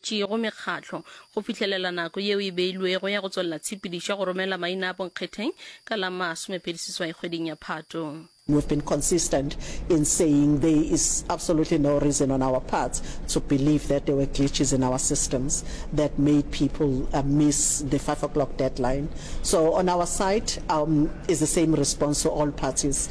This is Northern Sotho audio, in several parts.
tšeego mekgahlo go fihlelela nako yeo e beilwego ya go tswelela tshepedišo ya go romela maina a bonkgetheng ka la masomepedi seswai kgweding ya Phato. We've been consistent in saying there is absolutely no reason on our parts to believe that there were glitches in our systems that made people miss the five o'clock deadline. So on our side, um, is the same response to all parties.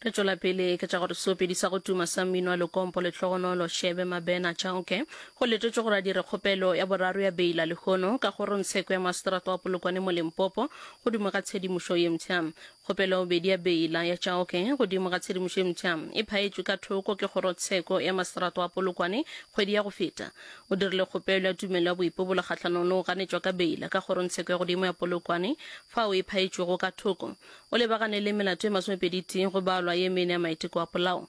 re tšwela pele ke tša gore seopedi sa go tuma sa mmino wa lekompo lehlogonolo shebe mabena tšaoke go letetšwe gore a dire kgopelo ya boraro ya beila lehono ka kgorongtsheko ya maseterata wa polokwane mo limpopo godimo ga tshedimošo ye mpsha Kgopelo bedi ya beila ya Chauke godimo ga tshedimošo e mpsha e phaetšwe ka thoko ke Kgorotsheko ya Maseterata wa Polokwane kgwedi ya go feta. O dirile kgopelo ya tumelo ya boipobolo kgahlanong le go ganetšwa ka beila ka Kgorongtsheko ya Godimo ya Polokwane fao e phaetšwego ka thoko. O lebagane le melato e masomepedi-tee go balwa ye mene ya maiteko a polao.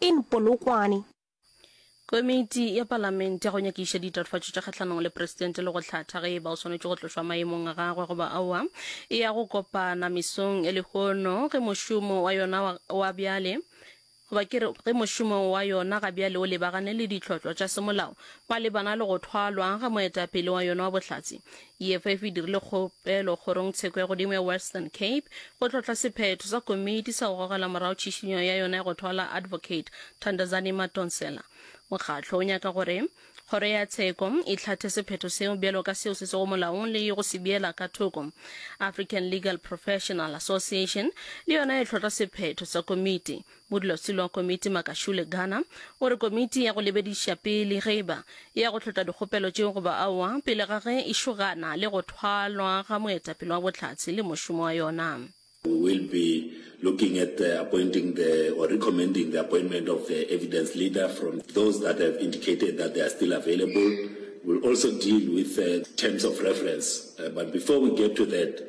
In Polokwane. Komiti ya Palamente ya go nyakiša ditatofatšo tša kgahlanong le Presidente le go hlatha ge e ba o swanetše go tlošwa maemong a gagwe goba aowa e ya go kopana mesong e lehono ge mošomo wa yona wa, wa bjale goba ke re ge mošomo wa yona ga bjale o lebagane le ditlhotlwa tša semolao malebana le go thwalwa ga moetapele wa yona wa bohlatse EFF e dirile kgopelo Kgorong Tsheko ya Godimo ya Western Cape go tlhohla sephetho sa komiti sa go gogela morago tšhišinyo ya yona ya go thwala Advocate Thandazani Madonsela. Mokgatlo o nyaka gore Kgoro ya Tsheko e hlathe sephetho seo bjalo ka seo se sego molaong le go se beela ka thoko. African Legal Professional Association le yona e tlhohla sephetho sa komiti. Modulasetulo wa komiti Makashule Gana o re komiti ya go lebediša pele ge e ba e ya go hlotla dikgopelo tšeo goba aowa pele ga ge e šogana le go thwalwa ga moetapele wa Bohlatse le mošomo wa yona. We will be looking at the appointing the or recommending the appointment of the evidence leader from those that have indicated that they are still available. We'll also deal with the terms of reference but before we get to that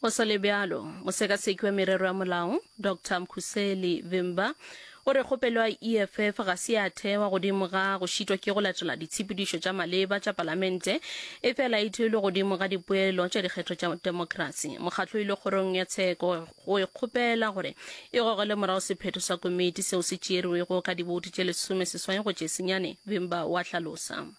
Go sa le bjalo, mosekasekwi wa merero ya molao, Doctor Mkhuseli Vimba, o re kgopelo ya EFF ga se ya thewa godimo ga go šitwa ke go latela ditshepedišo tša maleba tša Palamente, efela e theilwe godimo ga dipoelo tša dikgetho tša demokrasi. Mokgatlo o ile kgorong ya tsheko go e kgopela gore e gogele morago sephetho sa komiti seo se tšeerwego ka diboutu tše lesome seswai go tše senyane, Vimba o a hlalosa.